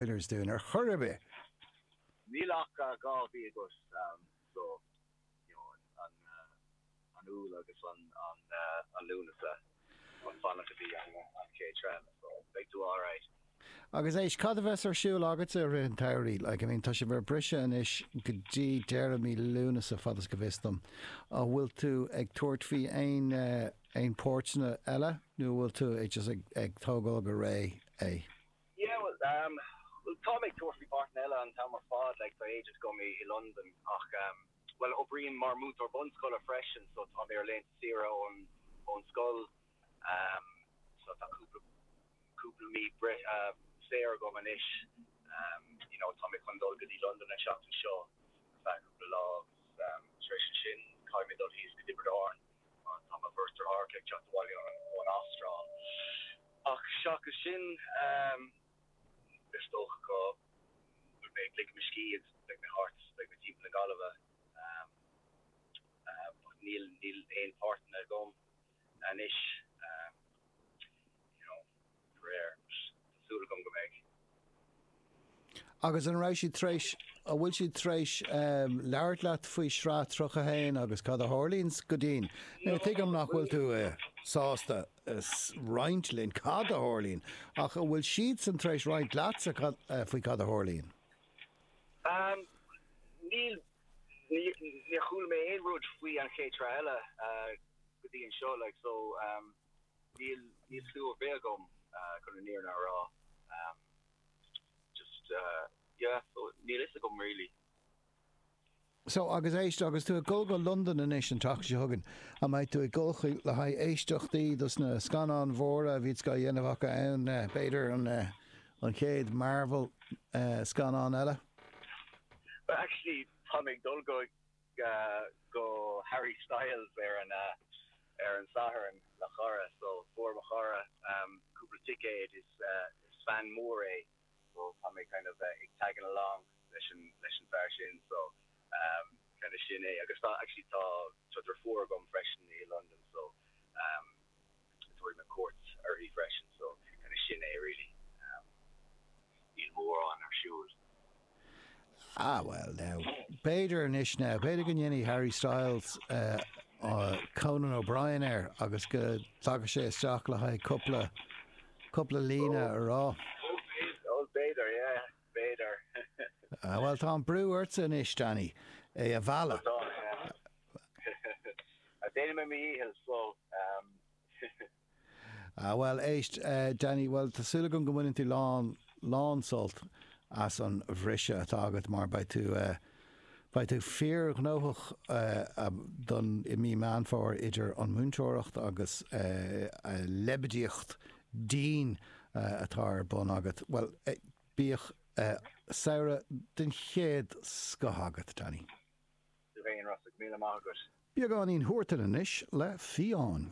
Oilers dúinn ar chor ar bith. Níl ach dhá mhí agat so an Iúil agus an Lúnasa chun fanacht go dtí an chéad traenáil so beidh tú alright. Agus Éist, cad a bheas ar siúl agatsa i rith an tsamhraidh? Like, I mean, tá sibh ar briseadh anois go dtí deireadh mí Lúnasa, fad is go bhfios dom. An bhfuil tú ag tabhairt faoi aon, aon pháirteanna eile nó an bhfuil tú just ag, ag tógáil go réidh é? Bhuel, táim ag tabhairt faoi pháirteanna eile an t-am ar fad, like tá agent agam i Londain ach bhuel oibrím mar múinteoir bunscoile freisin so tá mé ar laethanta saoire ón scoil so tá cúpla cúpla mí saor agam anois you know tá mé chun dul go dtí Londain an tseachtain seo ar feadh cúpla lá agus tar éis ansin caithfidh mé dul thíos go Tiobraid Árann. Tá mo bheirt deartháireacha ag teacht abhaile ón Astráil ach seachas sin is dócha go mbeidh, ligfidh mé mo scíth, beidh mé thart, beidh mé timpeall na Gaillimhe but níl, níl aon páirteanna agam anois you know. aréir. Tá súil agam go mbeidh. Agus an raibh siad tar éis, an bhfuil siad tar éis labhairt leat faoi shraith 31 agus cad a tharlaíonn go dtí'n, nó tuigim nach bhfuil tú sásta roinnt linn cad a tharlaíonn ach an bhfuil siadsan tar éis roinnt leatsa faoi cad a tharlaíonn? Níl, níor chuala mé aon rud faoi an chéad sraith eile go dtí anseo, like so. Níl aon chlue agam chun an fhírinne a rá ehm just yeah so níl fhios agam really. So agus éist, agus tú ag dul go Londain anois an tseachtain seo chugainn, an mbeidh tú ag dul chuí le haghaidh éisteachtaí dos na scannáin mhóra a bhíonns á dhéanamh acu ann, b'fhéidir an an chéad Marvel scannán eile? Well actually táim ag dul go go Harry Styles ar an ar an Satharn le chara so fuair mo chara cúpla ticéad is is fan mór é so tá mé kind of ag tagging along leis an leis an fear sin so kind of sin é agus tá actually tá deirfiúr agam freisin i Londain so tabharfaidh mé cuairt uirthi freisin so kind of sin é really. níl mórán ar siúl. Ah bhuel now, b'fhéidir anois now, b'fhéidir go ndéanfaidh Harry Styles Conan O'Brien air agus go dtiocfadh sé isteach le haghaidh cúpla, cúpla líne a rá. Bhuel, b'fhéidir, yeah, b'fhéidir. Ah bhuel, tá an brú ortsa anois Danny, é a mhealladh. Tá, yeah. Déanfaidh mé mo dhícheall, so. Ah, bhuel, éist, Danny, bhuel, tá súil agam go mbaineann tú lán, lán sult as an bhriseadh atá agat mar beidh tú, beidh tú fíorghnóthach don, i mí Meán Fómhair idir an mhúinteoireacht agus leibidíocht den atá ar bun agat. Bhuel, bíodh samhradh den chéad scoth agat, Danny. Tú féin, Rosg. Míle maith agat. Beagáinín Thuar Ceatha anois le Fiáin.